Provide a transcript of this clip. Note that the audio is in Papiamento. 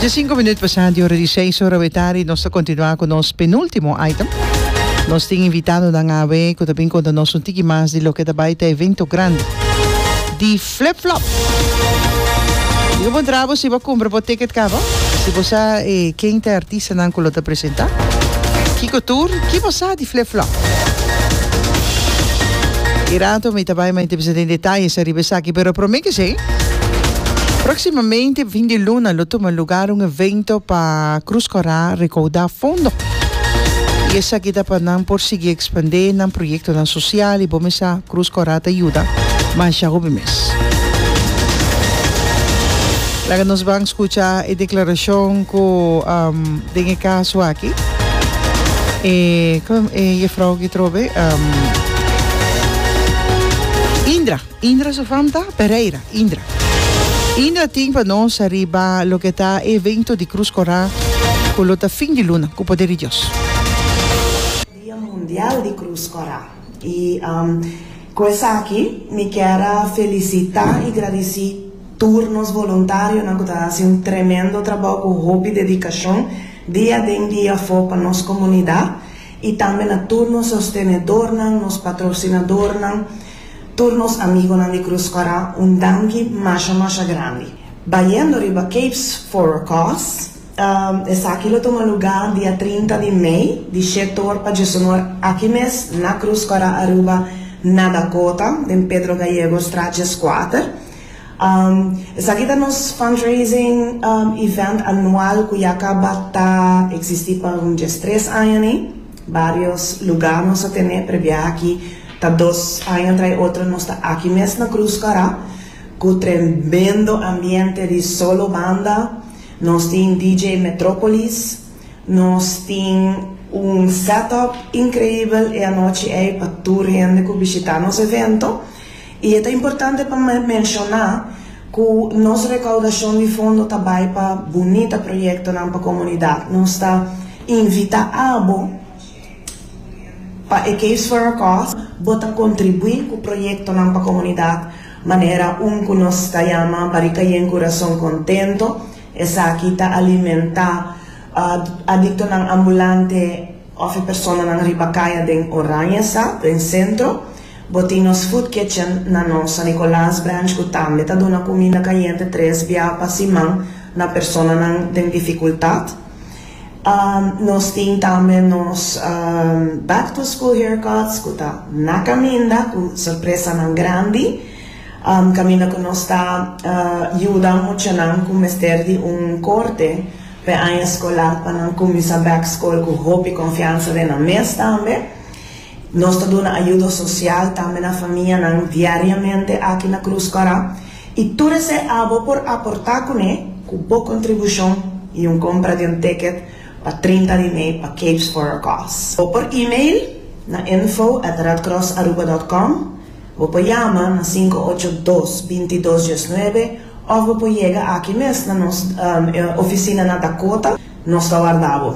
Dje sinku minut pasá di ora di seis ora awe tardi nos ta kontinuá ku nos penúltimo item. Nos tin invitándonan awe ku ta bin konta nos un tiki mas di loke ta bai ta e evento grandi di Flip Flop. Diga bo dra bo siba kumpra bo ticket kaba, si bo sa ken ta e artistanan ku lo ta presentá, kiko tur, ki bo sa di. Flip Flop. E rato mi ta bai ma intipi sa den detalles ariba esaki pero prome kesey proximamente fin di luna lo tuma lugar un evento pa Cruz Cora recauda fondo y esaki ta pa nan por sigui expande nan proyectonan social y bo mi sa Cruz Cora ta yuda masha hopi mes. Laga nos ban scucha e declaracion cu. Den e kaso aki e jefrouw Gitrobe Indra, Indra su fam ta Pereira, Indra Indra tin pa nos ariba loke ta e evento di Krus Korá ku lo ta fin di luna ku poder di Dios. Dia Mundial di Cruz Cora. Y cu esaki mi kier a felicita y gradici tur nos voluntarionan cu ta haci un tremendo trabao cu hopi dedicacion dia den dia afo pa nos comunidad y tambe na tur nos sostenedornan, nos patrocinadornan, tur nos amigonan di Cruz Cora un danki masha masha grandi. Bayendo riba Cape for a cause. Esaki lo tuma lugá dia trinta di mei di she tor pa djeshonor aki mes na Krus Kòrá Aruba na Dakota den Pedro Gallego straat djeskuater. Esaki ta nos fundraising event anual ku ya kaba ta eksistí pa un djes tres aña ni. Barios lugá nos a tene prebia aki ta dos aña trai otro nos ta aki mes na Krus Kòrá ku tremendo ambiente di solo banda. Nos tin DJ Metropolis, nos tin un set-up increibel e anochi ei pa tur hende cu bishita nos evento y e ta importante pa me menciona cu nos recaudacion di fondo ta bay pa bunita proyectonan pa comunidad. Nos ta invita abo pa e Caves for a Cause bo ta contribui cu proyectonan pa comunidad. Manera un ku nos ta yama pa di kayén kurason kontento, esaki ta alimentá adiktonan ambulante òf e personanan riba kaya den Oranjesa, den Sentro. Bo tin nos food kitchen na nos San Nicolas Branch ku tambe ta duna kuminda kayente tres bia pa siman na personanan den difikultat. Nos tin tambe nos back to school haircuts cu ta na caminda cu sorpresanan grandi. Caminda cu nos ta yuda muchanan cu mester di un corte pa e aña scolar pa nan cuminsa back school cu hopi confiansa den nan mes tambe. Nos ta duna ayudo social tambe na famianan diariamente aki na Cruz Coara y tur esey abo por aporta cune cu bo contribucion y un compra di un ticket pa trinta di mei pa Capes for a Cause. Bo por email na info at redcrossaruba dot com, bo por yama na sinku ocho dos, binti dos diesnuebe of bo por yega aki mes na nos oficinanan Dakota, nos ta warda bo.